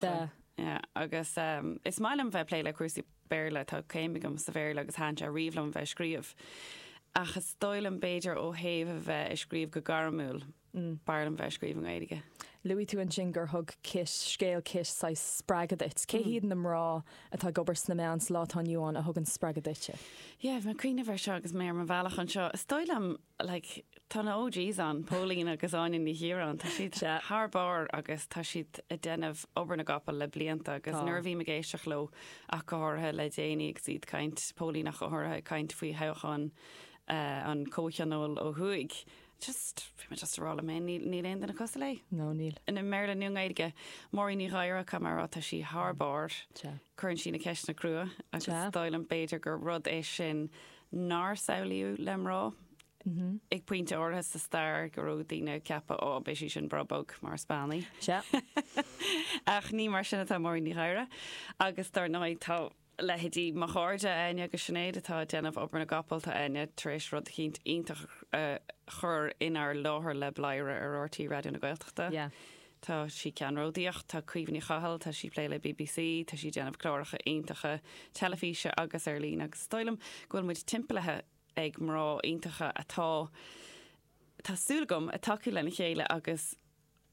Duh. Yeah, agus um, is maith liom bheith plé le cúrsaí Béarla, tá céim agam sa Bhéarla agus thaitin sé riamh liom bheith ag scríobh. Ach is dóigh liom b'fhéidir ó thaobh a bheith ag scríobh go gairmiúil, mm. b'fhearr liom bheith ag scríobh i nGaeilge. Luaigh tú ansin gur thug Kit, scéal Kit, saghas spreagadh duit. Cé hiad na mná atá ag obair sna meáin sa lá atá inniu ann a thugann spreagadh duitse? Yeah, bhí mé ag cuimhneamh ar seo agus mé ar mo bhealach anseo. Is dóigh liom like tá na OGs ann, Póilín agus Áine Ní Chiaráin, tá siad thar barr agus tá siad ag déanamh obair na gcapall le blianta agus tá. nuair a bhím ag éisteacht leo ach go háirithe le déanaí agus iad caint, Póilín ach go háirithe ag caint faoi thoghchán eh, an Chomhthionóil ó thuaidh, just, bhí mé just ag rá liom féin, níl, níl aon duine cosúil léi. No, níl. i mBéarla nó i nGaeilge. Máirín Ní Ghadhra, caithfidh mé a rá, tá sí thar barr, Tá. cuireann sí na ceisteanna crua agus Tá. dóigh liom b'fhéidir gur rud é sin nár samhlaíodh le mná. Ag pointe áirithe sa stair go raibh daoine ag ceapadh 'Á, beidh sí sin breá bog mar a sponge. Sea. Ach ní mar sin atá Máirín Ní Ghadhra agus dár ndóigh tá leithéidí mo chairde, Áine agus Sinéad, atá ag déanamh obair na gcapall, tá Áine tar éis rud eicínt iontach a chur inár láthair le Bladhaire ar RTÉ Raidió na Gaeltachta. Yeah. Tá sí ceannródaíoch, tá Caoimhe Ní Chathail, tá sí ag plé le BBC, tá sí ag déanamh cláracha iontacha teilifíse agus ar líne agus is dóigh liom go bhfuil muid timpeallaithe ag mná iontacha atá, tá súil agam, ag tacú lena chéile agus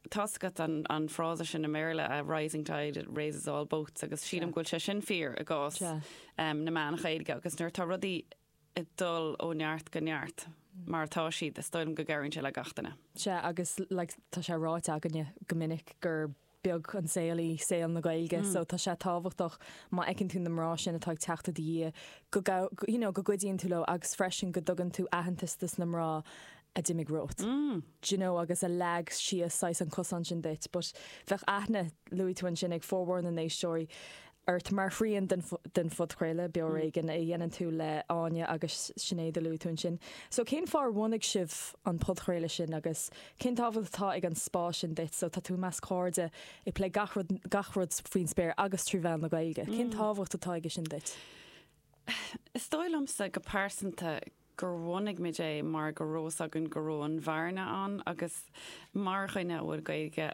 tá's agat an an frása sin i mBéarla, a rising tide raises all boats agus sílim go bhfuil sé sin fíor i gcás na meán Gaeilge agus nuair atá rudaí ag dul ó neart go neart mar atá siad, is dóigh liom go gcabhraíonn sé le gach duine. Sea, agus like tá sé ráite againne go minic gur beag an saol é saol na Gaeilge, so tá sé tábhachtach má fheiceann tú na mná sin atá ag teacht i do dhiaidh go gabh-, you know go gcuidíonn tú leo agus freisin go dtugann tú aitheantas dos na mná a d'imigh romhat, d'you know agus a leag síos saghas an cosán sin duit, but bheadh aithne, luaigh tú ansin, ag formhór na n-éisteoirí. ort mar thrian den phodchraoladh Beo ar Éigean a dhéanann tú le hÁine agus Sinéad a luaigh tú ansin. So cén fáth ar bhunaigh sibh an podchraoladh sin agus cén tábhacht atá ag an spás sin duit? So tá tú i measc cairde ag plé gach rud gach rud faoin spéir agus trí mheán na Gaeilge. Cén tábhacht atá aige sin duit? Is dóigh liomsa go pearsanta gur bhunaigh muid é mar go raibh fhios againn go raibh an bhearna ann agus mar dhuine a bhfuil Gaeilge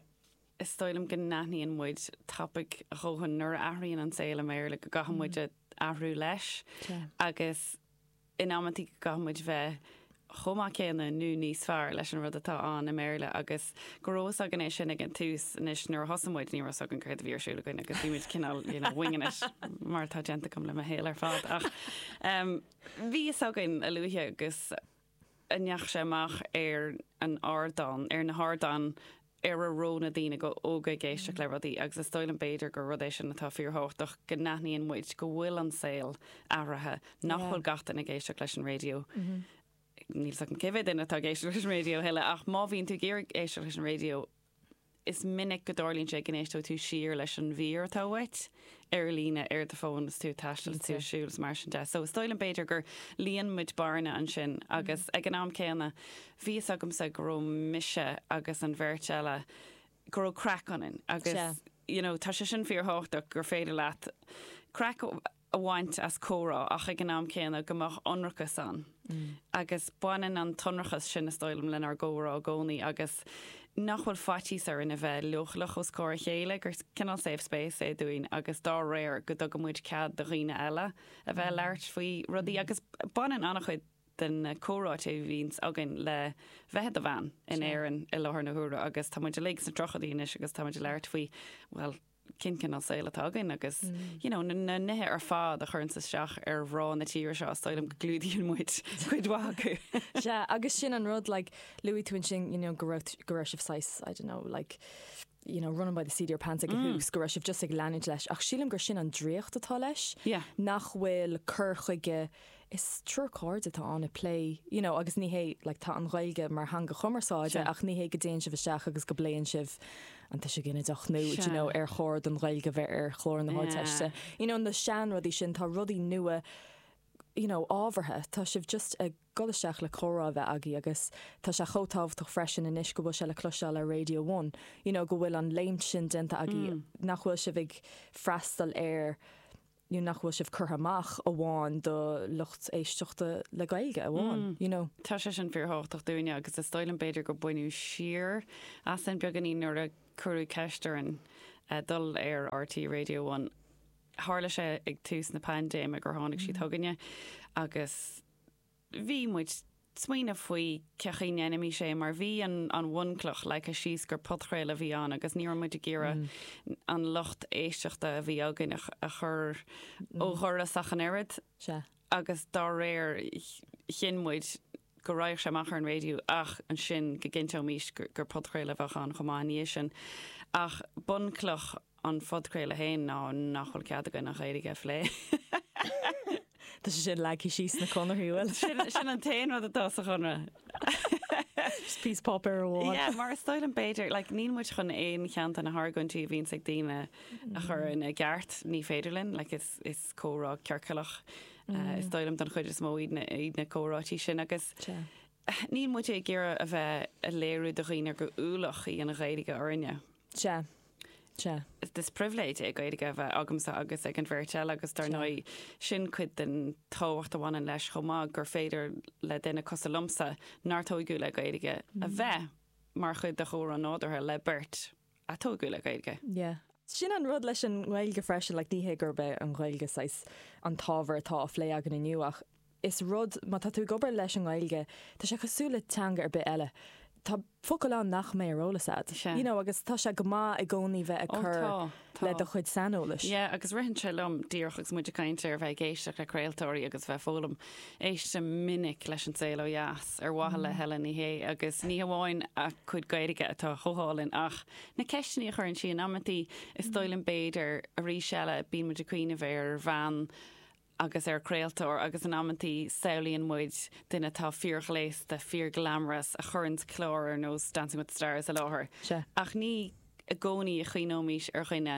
Is dóigh liom go n-aithníonn muid tapaidh a dóthain nuair a athraíonn an saol i mBéarla go gcaithfidh muid athrú leis agus in amantaí go gcaithfidh muid bheith chomh maith céanna nó níos fearr leis an rud atá ann i mBéarla agus go raibh fhios againn é sin ag an tús anois nuair a thosaigh muid ní raibh fhios againn céard a bhí ar siúl againn agus bhí muid cineál you know winging it mar atá déanta agam le mo shaol ar fad ach bhí fhios againn a luaithe agus a ndeachaigh sé amach ar an ardán, ar na hardáin ar a raibh na daoine óga ag éisteacht le rudaí agus is dóigh liom b'fhéidir gur rud é sin atá fíor thábhachtach go n-aithníonn muid go bhfuil an saol athraithe, nach bhfuil gach duine ag éisteacht leis an raidió. Níl a fhios agam cé mhéad duine atá ag éisteacht leis an raidió a thuilleadh ach má bhíonn tú ag iarraidh éisteacht leis an radio, Is minic go dtarlaíonn sé go n-éisteoidh tú siar leis an mhír atá uait ar líne ar do fhón is tú ag taisteal, is tú ag siúl is mar sin de. So is dóigh liom b'fhéidir gur líon muid bearna ansin agus ag an am céanna bhí a fhios agamsa go raibh mise agus an bheirt eile, go raibh craic ionainn agus you know tá sé sin fíor thábhachtach gur féidir leat craic a bhaint as comhrá ach ag an am céanna go mbeadh ionrachas ann agus baineann an t-ionrachas sin, is dóigh liom, lenár gcomhrá i gcónaí agus nach bhfuil faitíos orainn a bheith leochaileach os comhair a chéile, gur cineál safe space é dúinn agus dá réir go dtugann muid cead do dhaoine eile a bheith ag labhairt faoi rudaí agus baineann an-chuid de na comhráite a bhíonns againn le bheith i do bhean in Éirinn i láthair na huaire agus tá muid uilig sna tríochaidí anois agus tá muid ag labhairt faoi, bhuel, cén cineál saoil atá againn agus you know, na, na nithe ar fad a chuireanns isteach ar mhná na tíre seo, is dóigh liom go gclúdaíonn muid cuid mhaith acu. Sea, agus sin an rud, like, luaigh tú ansin, you know, go raibh t- go raibh sibh saghas, I don't know, like, you know, running by the seat of your pants ag an tús, go raibh sibh just ag leanúint leis, ach sílim gur sin an draíocht atá leis, Yeah. nach bhfuil cur chuige is triúr cairde atá ann ag plé you know agus ní hé like tá an Ghaeilge mar theanga chumarsáide Sure. ach ní hé go dtéann sibh isteach agus go bpléann sibh an tuiseal ginideach nó do you Sure. know ar chóir don Ghaeilge a bheith ar chlár na hArdteiste Yeah. you know na seanrudaí sin tá rudaí nua you know ábhartha tá sibh just ag dul isteach le comhrá a bheith agaibh agus tá sé chomh tábhachtach freisin anois go bhfuil sé le cloisteáil ar Raidió One you know go bhfuil an léimt sin déanta agaibh Mm. nach bhfuil sibh ag freastal ar you know, nach bhfuil sibh curtha amach amháin do lucht éisteachta le Gaeilge amháin, you know. Tá sé sin fíor thábhachtach dúinne agus is dóigh liom b'fhéidir gur baineadh siar asainn beagáinín nuair a cuireadh ceist orainn dul ar RTÉ Raidió One. Tharla sé ag tús na paindéime gur tháinig siad chugainne agus bhí muid smaoineamh faoi cén chaoi a ndéanfaimis é mar bhí an an bhunchloch leagtha síos gur podchraoladh a bhí ann agus ní raibh muid ag iarraidh an lucht éisteachta a bhí againn a a chur ó dhoras ach an oiread agus dá réir chinn muid go raghadh sé amach ar an raidió ach ansin go gcinnteoimis gur podchraoladh a bheadh ann chomh maith i ndiaidh sin ach bunchloch An podchraoladh féin ná nach bhfuil cead againn an Ghaeilge a phlé. Tá sé sin leagtha síos sna conarthaí an bhfuil? Sin sin an t-aon rud atá sa chonradh. Just píosa páipéar amháin. Yeah, mar is dóigh liom b'fhéidir, like níl muid chun aon cheann de na hargóintí a bhíonns ag daoine a chur ina gceart, ní féidir linn, like is is comhrá ciorcalach eh, is dóigh liom don chuid is mó iad na iad na comhráití sin agus Sea. níl muid ag iarraidh a bheith a léiriú do dhaoine gur ualach í an Ghaeilge orainne. Sea. Sea. Is pribhléid é Gaeilge a bheith agamsa agus ag an bheirt eile agus dar ndóigh sin cuid den tábhacht a bhaineann leis chomh maith gur féidir le duine cosúil liomsa nár tógadh le Gaeilge a bheith mar chuid de chomhrá nádúrtha le beirt a tógadh le Gaeilge. Sin an rud leis an nGaeilge freisin, like ní hé gurb é an Ghaeilge saghas an t-ábhar atá á phlé againn inniu ach, Is rud, má tá tú ag obair leis an nGaeilge, tá sé cosúil le teanga ar bith eile. Tá focail ann nach mbeidh ar eolas agat. Sea. You know, agus tá sé go maith i gcónaí bheith ag Ó cur tá, tá. le do chuid saineolais. Yeah, agus ritheann sé liom díreach agus muid ag caint ar bheith ag éisteacht le craoltóirí agus a bheith ag foghlaim. Éistim go minic leis An Saol ó Dheas, ar mhaithe le Helen Ní Shé, agus ní hamháin a cuid Gaeilge atá chomh hálainn ach na ceisteanna a chuireann sí in amantaí, is dóigh liom b'fhéidir arís eile bíonn muid ag cuimhneamh ar bhean agus ar chraoltóir agus in amantaí samhlaíonn muid duine atá fíorghléasta, fíorghlamorous a chuireanns clár ar nós Dancing with the Stars i láthair ach ní i gcónaí a chuimhneoimís ar dhuine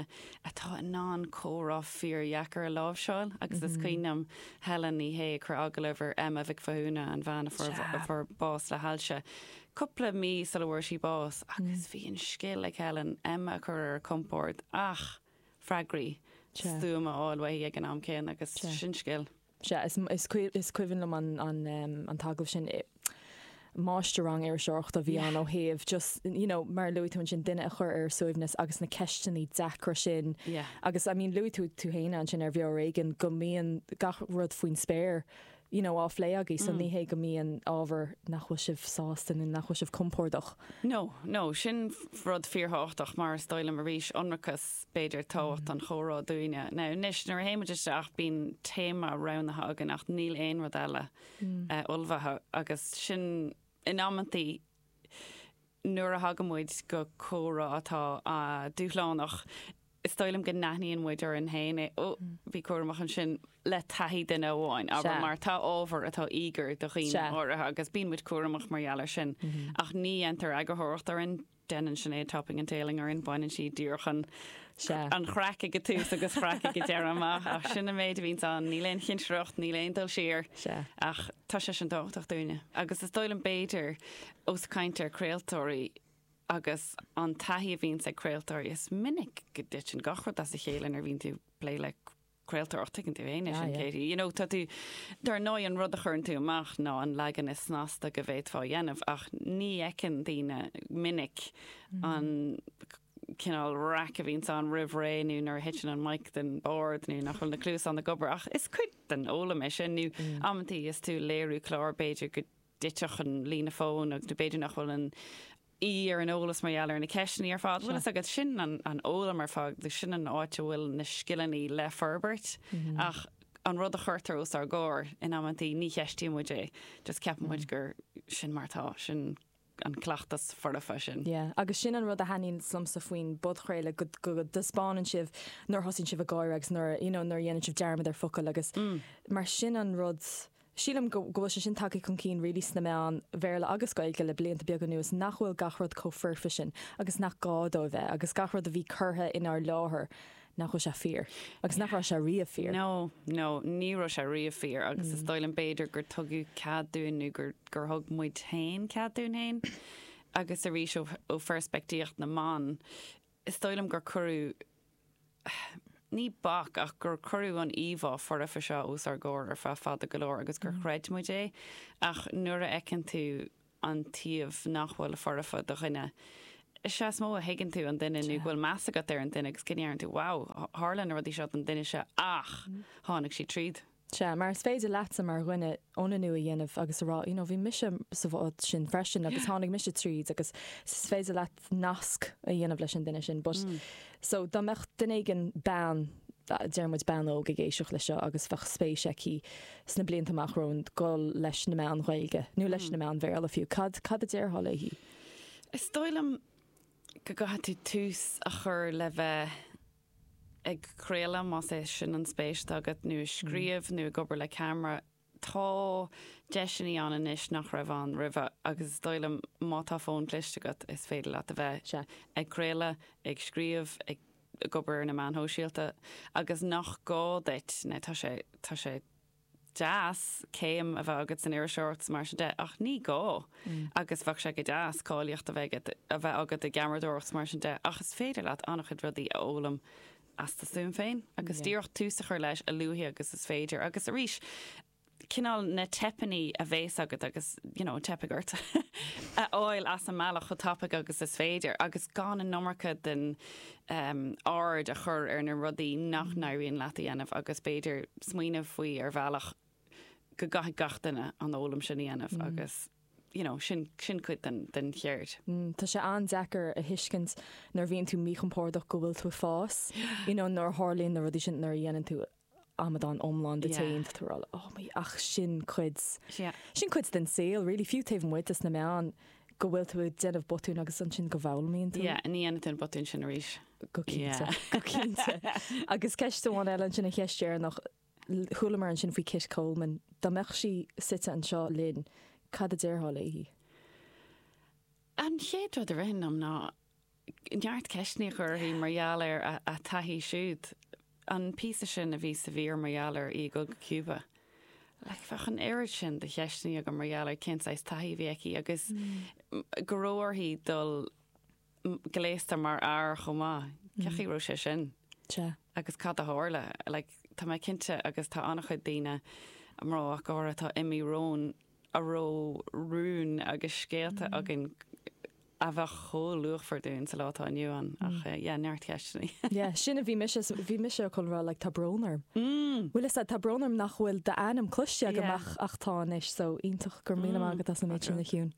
atá in ann comhrá fíordheacair a láimhseáil agus is cuimhin liom Helen Ní Shé ag cur agallamh ar Emma Mhic Mhathúna, an bhean a fuair bás le hailse, cúpla mí sula bhfuair sí bás agus bhí an scil ag Helen Emma a chur ar a compord ach. freagraí stuama a fháil uaithi ag an am céanna agus sin scil. Sea, is cuimhin liom an t-agallamh sin, máistir-rang iriseoireachta a bhí ann ó thaobh just, you know, mar a luaigh tú ansin duine a chur ar a suaimhneas agus na ceisteannaí deacra sin agus I mean luaigh tú tú féin ansin ar Bheo ar Éigean go mbíonn gach rud faoin spéir, you know á phlé agaibh so ní hé go mbíonn ábhar nach bhfuil sibh sásta nó nach bhfuil sibh compordach. No, no, sin rud fíorthábhachtach mar is dóigh liom arís ionracas b'fhéidir tábhacht an chomhrá dúinne. Now anois nuair a théimid isteach bíonn téama roghnaithe againn ach níl aon rud eile ullmhaithe agus sin in amantaí nuair a thagann muid go comhrá atá dúshlánach is dóigh liom go n-aithníonn muid orainn féin é, oh, bí cúramach ansin le taithí duine amháin, abair, mar tá ábhar atá íogair do dhaoine áirithe agus bíonn muid cúramach mar gheall air sin, ach ní dhéantar eagarthóireacht orainn, déanann Sinéad topping and tailing orainn, baineann sí díreach an chraic ag an tús agus an chraic ag an deireadh amach ach sin an méid a bhíonn ann, níl aon chinsireacht, níl aon dul siar ach tá sé sin tábhachtach dúinne agus is dóigh liom b'fhéidir Ó, is ag caint ar chraoltóirí agus an taithí a bhíonns ag craoltóirí, is minic go dtiteann gach rud as a chéile nuair a bhíonn tú ag plé le craoltóir ach tuigeann tú fhéin é sin, Katie. You know, tá tú, dar ndóigh an rud a chuireann tú amach ná an leagan is snasta go bhféadfá a dhéanamh ach ní fheiceann daoine go minic an cineál raic a bhíonns ann roimh ré nó nuair a thiteann an mic den bord nó nach bhfuil na cluasáin ag obair ach is cuid den fhoghlaim é sin nó amantaí is tú ag léiriú clár b'fhéidir go dtitfeadh an líne fóin agus b'fhéidir nach bhfuil an aoi ar an eolas mar gheall ar na ceisteanna ar fad. Bhuel, agus sin an fhoghlaim ar fad, agus sin an áit a bhfuil na scileanna le forbairt. Ach an rud a chuirtear os ár gcomhair in amantaí, ní cheistíonn muid é, just ceapann muid gur sin mar atá, sin an cleachtas foirfe sin. Yeah, agus sin an rud a thaitníonn liomsa faoin bpodchraoladh, go, go dtaispeánann sibh nuair a thosaíonn sibh ag gáire agus nuair a, you know, nuair a dhéanann sibh dearmad ar fhocal agus mar sin an rud Sílim go bhfuil sé sin tagtha chun cinn really sna meáin Bhéarla agus Gaeilge le blianta beaga anuas nach bhfuil gach rud chomh foirfe sin agus nach gá dó a bheith agus gach rud a bhí curtha inár láthair nach bhfuil sé fíor agus nach raibh sé riamh fíor. No, no, ní raibh sé riamh fíor agus is dóigh liom b'fhéidir gur tugadh cead dúinn nó gur gur thug muid féin cead dúinn féin agus arís ó pheirspictíocht na mban, is dóigh liom gur cuireadh, ní bac, ach gur cuireadh an íomhá fhoirfe seo os ár gcomhair ar feadh fada go leor agus gur chreid muid é ach nuair a fheiceann tú an taobh nach bhfuil foirfe de dhuine, is ea is mó a thuigeann tú an duine nó go bhfuil meas agat ar an duine agus go ndeireann tú, wow, tharla na rudaí seo don duine seo ach tháinig siad tríd. Sea, mar is féidir leatsa mar dhuine ionannú a dhéanamh agus a rá, you know, bhí mise sa bhád sin freisin agus tháinig mise tríd agus is féidir leat nasc a dhéanamh leis an duine sin. But, so dá mbeadh duine éigin, bean, deir muid bean óg, ag éisteacht leis seo agus beadh spéis aici sna blianta amach romhainn dul leis na meáin Ghaeilge, nó leis na meáin Bhéarla fiú, cad, cad a déarfá léi? Is dóigh liom go gcaithfidh tú tús a chur le bheith ag craoladh, más é sin an spéis atá agat, nó ag scríobh, nó ag obair le ceamara, tá deiseannaí ann anois nach raibh ann roimhe agus is dóigh liom má tá fón cliste agat is féidir leat a bheith, sea, ag craoladh, ag scríobh, ag ag obair ar na meáin shóisialta agus nach gá duit, now tá sé, tá sé. deas céim a bheith agat san iriseoireacht is mar sin de ach ní gá agus bheadh sé go deas cáilíocht a bheith agat, a bheith agat i gceamaradóireacht is mar sin de ach is féidir leat an-chuid rudaí a fhoghlaim as do stuaim féin agus díreach tús a chur leis a luaithe agus is féidir agus arís cineál na teipeannaí a bhéas agat agus you know teipfidh ort a fháil as an mbealach chomh tapaidh agus is féidir agus gan an iomarca den aird a chur ar na rudaí nach n-éiríonn leat a dhéanamh agus b'fhéidir smaoineamh faoi ar bhealach go gcaithfidh gach duine an fhoghlaim sin a dhéanamh agus you know sin sin cuid den den cheird. Tá sé an-deacair a thuiscint nuair a bhíonn tú míchompordach go bhfuil tú ag fás, you know nuair a tharlaíonn na rudaí sin nuair a dhéanann tú amadán iomlán díot féin tá tú ag rá like oh my ach sin cuid, sin cuid den saol really, fiú taobh amuigh de sna meáin go bhfuil tú ag déanamh botúin agus ansin go bhfoghlaimíonn tú. Yeah, ní dhéanfaidh tú an botún sin arís. Go cinnte, go cinnte. Agus ceist amháin eile ansin an cheist dheireanach, chualamar ansin faoi Kit Coleman, dá mbeadh sí suite anseo linn, cad a déarfá léi? An chéad rud a ritheann liom ná neart ceisteanna a chur uirthi mar gheall ar a taithí siúd. An píosa sin a bhí sa mhír mar gheall ar í ag dul go Cúba, like bheadh an oiread sin de cheisteanna agam mar gheall ar cén saghas taithí a bhí aici agus go raibh uirthi dul gléasta mar fhear chomh maith. Cén chaoi a raibh sé sin? Sea. Agus cad a tharla? Like tá mé cinnte agus tá an-chuid daoine, mná ach go háirithe, atá imithe romhainn a raibh rúin agus scéalta againn a bheadh chomh luachmhar dúinn sa lá atá inniu ann, ach yeah, neart ceisteanna. Yeah, sin a bhí mise, bhí mise chun rá like tá brón orm. Bhuel is ea, tá brón orm nach bhfuil d'ainm cloiste agam ach tá anois, so iontach, go raibh míle maith agat as an méid sin a Shiún.